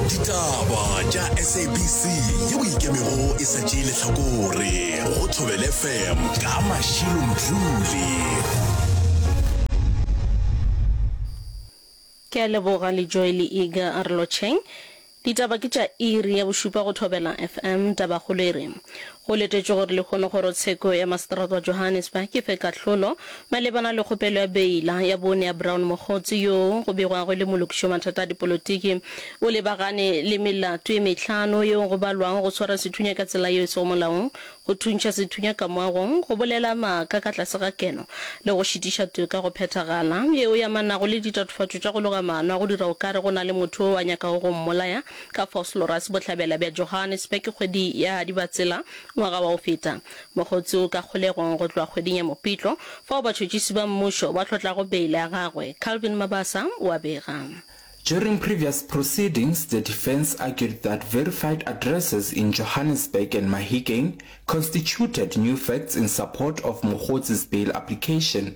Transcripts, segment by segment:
ditaba tša sabc ye o ikemego e sa tšee lehlakore go thobele fm ka mašilo mdluli ke a leboga le joy le ega a re lotšheng ditaba ke tša iri ya bošupa go thobela fm tabakgolo e re Go letetšwe gore lehono Kgorotsheko ya Maseterata wa Johannesburg e fe kahlolo malebana le kgopelo ya beila ya bone ya Brown Mogotsi yoo go begwago e le molokiši wa mathata a dipolotiki. O lebagane le melato e mehlano yeo go balwago go swara sethunya ka tsela yeo e sego molaong, go thuntšha sethunya ka moagong, go bolela maaka ka tlase ga keno le go šitiša toka go phethagala, yeo e amanago le ditatofatšo tša go loga maano a go dira okare go na le motho yo a nyakago go mmolaya. Ka Vosloorus, Bohlabela bja Johannesburg, kgwedi ya Dibatsela ngwaga wa go feta. Mogotsi o ka kgolegong go tloga kgweding ya Mopitlo, fao batšhotšisi ba mmušo ba hlotlago beile ya gagwe, Calvin Mabasa o a bega. During previous proceedings, the defence argued that verified addresses in Johannesburg and Mahikeng constituted new facts in support of Mogotsi's bail application.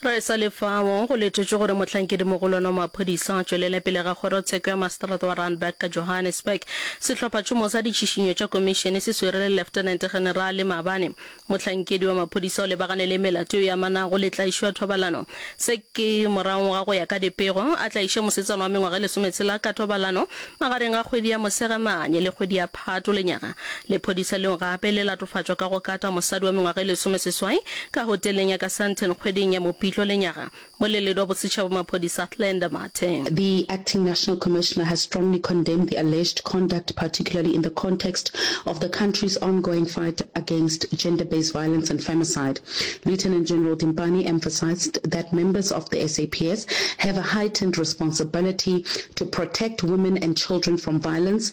Ge e sa le fao, go letetšwe gore mohlankedi-mogolwane wa maphodisa a tšwelele pele ga kgorotsheko ya maseterata wa Randburg ka Johannesburg. Sehlophatšhomo sa ditšhišinyo tša komišene se swere le Leftenente-Generale maabane mohlankedi wa maphodisa o lebagane le melato yeo e amanago le tlaišo ya thobalano. Se ke morago ga go ya ka dipego a tlaiše mosetsana wa mengwaga e lesometshela ka thobalano magareng ga kgwedi ya Mosegamane le kgwedi ya Gatolenyana, lephodisa leo gape le latofatšwa ka go kata mosadi wa mengwaga e lesomeseswai ka hoteleng ya ka Sandton kgweding ya Mopitlo lenyaga. Moleledwa wa bosetšhaba wa maphodisa Athlenda Mathe. The Acting National Commissioner has strongly condemned the alleged conduct particularly in the context of the country's ongoing fight against gender-based violence and femicide. Lieutenant General Dimpani emphasized that members of the SAPS have a heightened responsibility to protect women and children from violence,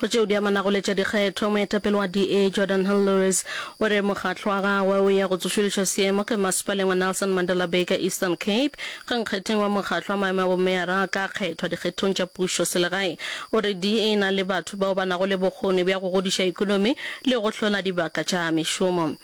go tšeo di amanago le tša dikgetho moetapele wa da jordan hill lewis o re mokgatlo wa gagwe o ya go tsošološa seemo ke masepaleng wa nelson mandela bay ka eastern cape ge nkgetheng wa mokgatlo wa maemo a bomeara a ka kgethwa dikgethong tša pušo selegae o re da e na le batho bao ba nago le bokgoni bja go godiša ekonomi le go hlola dibaka tša mešomo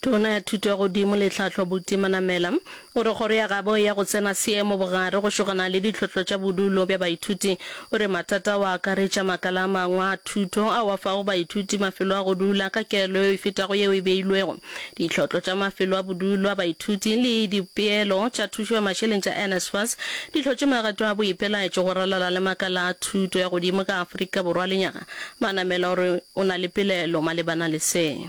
Tona ya Thuto ya Godimo le Tlhahlo Buti Manamela o re kgoro ya gabo ya go tsena seemo bogare go šogana le ditlhohlo tša bodulo bja baithuti. O re mathata ao a akaretša makala a mangwe a thuto ao a fago baithuti mafelo a go dula ka kelo yeo e fetago yeo e beilwego, ditlhohlo tša mafelo a bodulo a baithuti le dipeelo tša thušo ya mašeleng tša NSFAS di hlotše magato a boipelaetšo go ralala le makala a thuto ya godimo ka Afrika Borwa. Lenyaga Manamela o re o na le pelaelo malebana le se.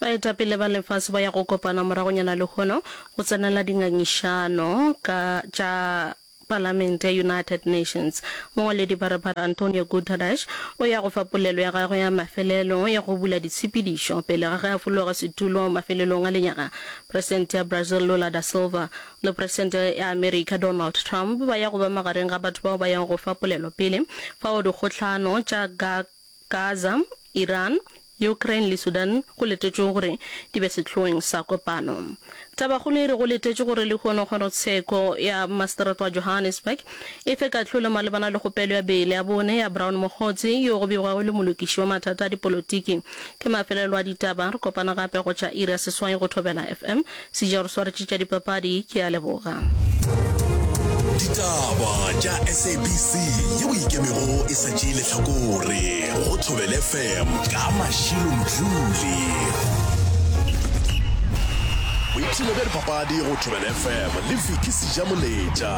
Baetapele ba lefase ba ya go kopana moragonyana lehono go tsenela dingangišano ka tša Palamente ya United Nations. Mongwaledi pharephare Antonio Guterres o ya go fa polelo ya gagwe ya mafelelo ya go bula ditshepedišo pele ga ge a fologa setulo mafelelong a lenyaga. Presidente ya Brazil Lula da Silva le Presidente ya America Donald Trump ba ya go ba magareng ga batho bao ba yago go fa polelo pele fao dikgohlano tša GAC Gaza, Iran, Ukraine le Sudan go letetšwe gore di be sehloeng sa kopano. Tabakgolo e re go letetšwe gore lehono kgorotsheko ya Maseterata wa Johannesburg e fe kahlolo malebana le kgopelo ya beile ya bone ya Brown Mokgotsi yo go begwago e le molokiši wa mathata a dipolotiki. Ke mafelelo a ditaba, re kopana gape go tšwa iri ya seswai go Thobela FM. Sija o re swaretše tša dipapadi, ke a leboga. Ditaba tša SABC ye o ikemego e sa tšee lehlakore go Thobel FM ka Mashilo Mdluli. Boipshino bja dipapadi go Thobel FM le Vicky Sija Moletša.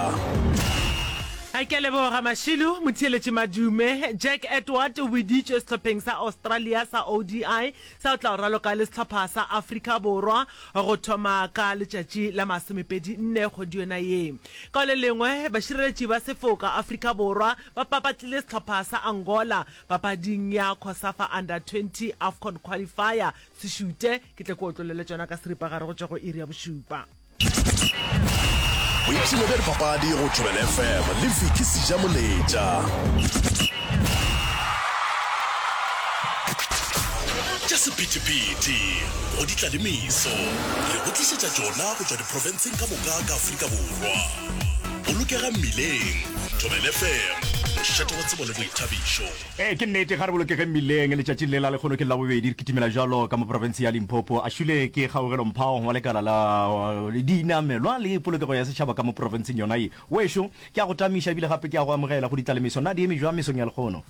Ke a leboga Mashilo. Motheeletši Madume. Jack Edward o weditšwe sehlopheng sa Australia sa ODI Sa o tla o raloka le sehlopha sa Afrika Borwa go thoma ka letšatši la masomepedi nne kgwedi yona ye. Ka le lengwe, bašireletši ba sefoka Afrika Borwa ba papatlile sehlopha sa Angola papading ya Cosafa Under 20 Afcon Qualifier. Sešute, ke tle ke otlolele tšona ka seripagare go tšwa go iri ya bošupa. boipshino bja dipapadi go tšwelela fm le viki seja moletša tša sephethephethe go di tlalemiso re go tlišetša tšona go tšwa diprofenseng ka moka ka afrika borwa bolokega mmileng tšwelela fm mošate wa tsebo le boithabišo Ee, ke nnete, ga re bolokegeng mmileng. Letšatši le la lekgono ke Labobedi re kitimela jalo ka mo profenseng ya Limpopo. A šwile ke Kgaugelo Mphao wa lekala la dinamelwa le polokego ya setšhaba ka mo profenseng yona ye. Wešo, ke a go tamiša ebile gape ke a go amogela go ditla le meso. Na di eme bjang mesong ya lekgono?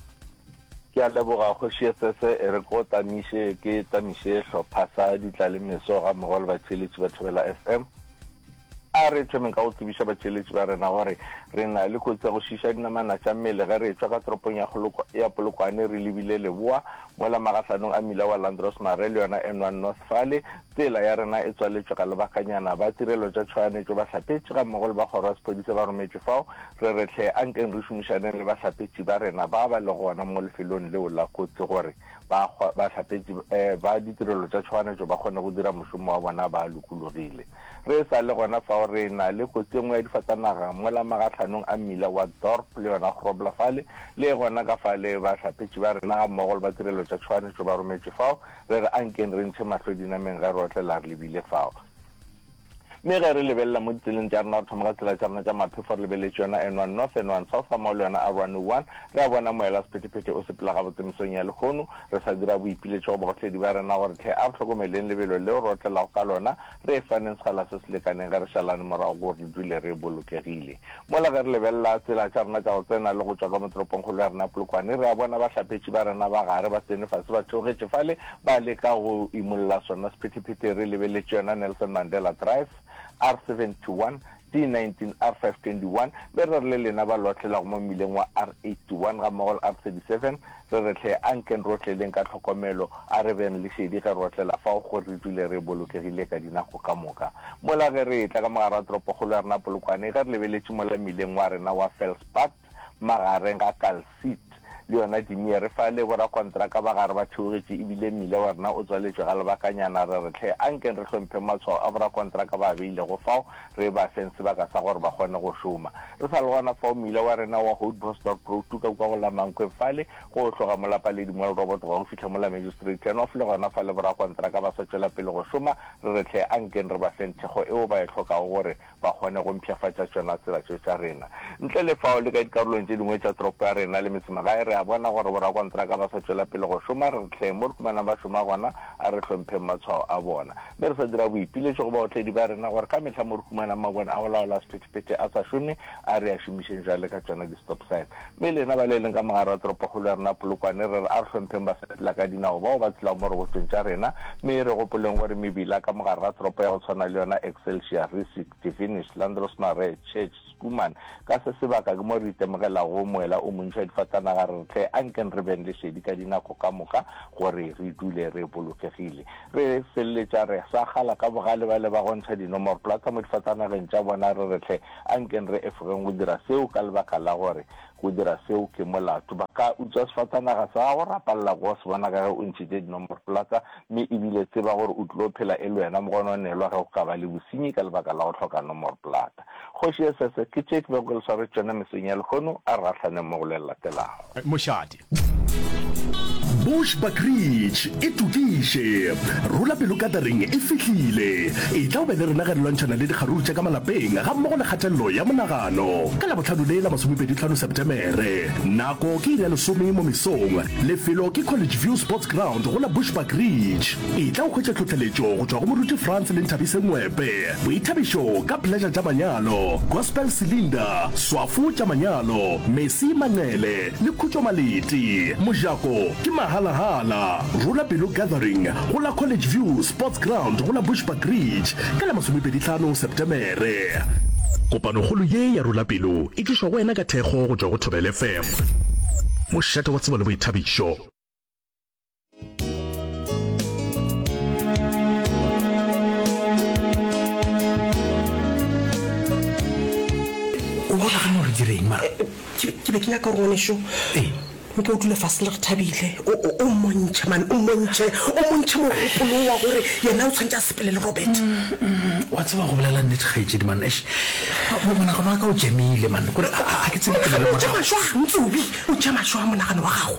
Ke a leboga Kgoši Esese, e re ke go tamiše ke tamiše sehlopha sa ditla le meso gammogo le batheeletši ba Thobela FM. A re thomeng ka go tsebiša batšweletši ba rena gore re na le kotsi ya go šiiša dinamana tša mmele ge re etšwa ka toropong ya Goloko ya Polokwane re lebile leboa mola magahlanong a mmila wa Landros Mare le yona N one North fale tsela ya rena e tswaletšwe ka lebakanyana. Ba tirelo tša tšhoganetšo, bahlapetši gammogo le ba kgoro ya sephodisa ba rometšwe fao. Re re hle a nkeng re šomišaneng le bahlapetši ba rena ba ba lego gona mo lefelong leo la kotsi gore ba bahlapetši ba ditirelo tša tšhoganetšo ba kgone go dira mošomo wa bona ba lokologile. Re sa le gona fao re na le kotsi e nngwe ya difatanaga mola magahlhanong a mmila wa Dorp le yona Grobler fale, le gona ka fale bahlapetši ba rena gammogo le ba tirelo tša tšhoganetšo ba rometše fao. Re re ankeng re ntšhe mahlo dinameng ge rohle la re lebile fao. Mme ge re lebelela mo ditseleng tša rena, re thoma ka tsela tša rena tša maphefo re lebeletše yona N one North, N one South gammogo le yona R one O one, re a bona moela sephethephethe o sepela gabotse mesong ya lehono. Re sa dira boipiletšo go bagotledi ba rena gore tlhe a re hlokomeleng lebelo leo re otlelago ka lona, re e faneng sekgala se se lekaneng ge re šalane morago gore re dule re bolokegile. Mola ge re lebelela tsela tša rena tša go tsena le go tšwa ka mo toropongkgolo ya rena ya Polokwane, re a bona bahlapetši ba rena ba gare ba tsene fase ba theogetše fale ba leka go imolla sona sephetephete re lebeletše yona Nelson Mandela Drive, R71, C19 R521, le re re le lena ba loatlelago mo mmileng wa R81 gammogo le R37, re re hle, a nkeng re otleleng ka tlhokomelo, a re beng le šedi ge re otlela fao gore re dule re bolokegile ka dinako ka moka. Mola ge re etla ka mogare wa toropokgolo ya rena Polokwane, ge re lebeletše mola mmileng wa rena wa Felspad, magareng ga Calcit le yona Dimiere fa le borakontraka ba gare ba theogetše e bile mmila wa rena o tswaletšwe ga lebakanyana, re re hle a nkeng re hlompheng matshwao a borakontraka ba a beilego fao re e ba feng sebaka sa gore ba kgone go šoma. Re sa le gona fao mmila wa rena wa Houtbosdorp Road tuka kwa go la Mankweng fale go tloga mo la Paledi Mall Robot gwa go fihla mo la Magistrate Turnoff le gona fale borakontraka ba sa tšwela pele go šoma re re hle a nkeng re ba feng thekgo eo ba e hlokago gore ba kgone go mpshafatša tšona tsela tše tša rena. Ntle le fao, le ka dikarolong tše dingwe tša toropo ya rena le metsemagae re a bona gore borakontraka ba sa tšwela pele go šoma. Re re tleng mo re humanang ba šoma gona, a re hlompheng matshwao a bona. Mme re sa dira boipiletšo go baotledi ba rena gore ka mehla mo re humanang mabone a go laola sephethephethe a sa šome, a re a šomišeng bjale ka tšona di-stop sign. Mme lena ba le leng ka mo gare ga toropokgolo ya rena Polokwane, re re a re hlompheng basepela ka dinao bao ba tshelago mo rogotšong tša rena, mme e re gopoleng gore mebila ka mo gare ga toropo ya go tshwana le yona Excelsior, Rissik, Devenish, Landrosmare, Church, Schoeman, ka se sebaka ke mo re itemogelago moela o montši wa difatanaga, re re hle ankeng re beng le šedi ka dinako ka moka gore re dule re bolokegile. Re feleletša re sa kgala ka bogale ba le ba go ntšha dinomoroplata mo difatanageng tša bona, re re hle Ankeng re efogeng go dira seo ka lebaka la gore go dira seo ke molato. Ba ka utswa sefatanaga sa gago, rapalela go se bona ka ge o ntšhitše dinomorplatsa, mme e bile tseba gore o tlilo phela e le wena mogononelwa ge go ka ba le bosenyi ka lebaka la go hloka nomorplata. Kgoši ye sese ke tše ke bego ke le swaretše tšona mesong ya lehono, a re gahlane mo go le le latelago. Mošate, Bush Bakridge e tokiše. Rula pelo katering e fihlile. Etla o be le rena ge re lwantšhana le dikgaruru tša ka malapeng ga mmogo le kgatelelo ya monagano. Ka Labohlano le la masomepedi tlhano Sepetemere. Nako ke iri ya lesome mo mesong. Lefelo ke College View Sports Ground go la Bush Bakridge. Etla o hwetše tlhohleletšo go tšwa go Moruti Frans le Nthabise Ngwepe. Boithabišo ka Pleasure tša manyalo, Gospel Cylinder, Swafo tša manyalo, Mercy Manqele, Le Khutšo Malete, Mojako, ke mahala-hala. Rula Pelo Gathering go la College View Sports Ground go la Bushbuckridge ka la masomepedi tlhano Septemere. Kopanokgolo ye ya Rula Pelo e tlišwa go wena ka thekgo go tšwa go Thobel FM, mošate wa tsebo le boithabišo. o bona gane gore direng mara eh, eh, ke be ke nyaka gore ngwaneso ee nka o dula fase le re thabile o mmontšhe mane o mmontšhe o mmontšhe mogopolo wa gore yena o tshwanetse a sepele le robert mm, mm, wa tseba go bolela nnete gaetsedi man ash monagano wa ka o jamile man kore a ke tsebejamašwa ntsobi o jamašwa monagano wa gago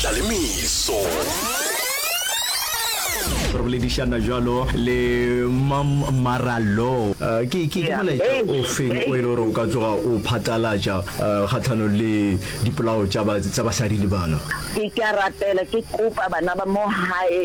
Tlalemiso. re boledišana jalo le mam maralo eh, ke ke ke molaetša o feng o e le gore o ka tsoga o phatlalatša eh, kgatlhano le dipolao tša basadi le bana ke ka rapela ke kopa bana ba mo gae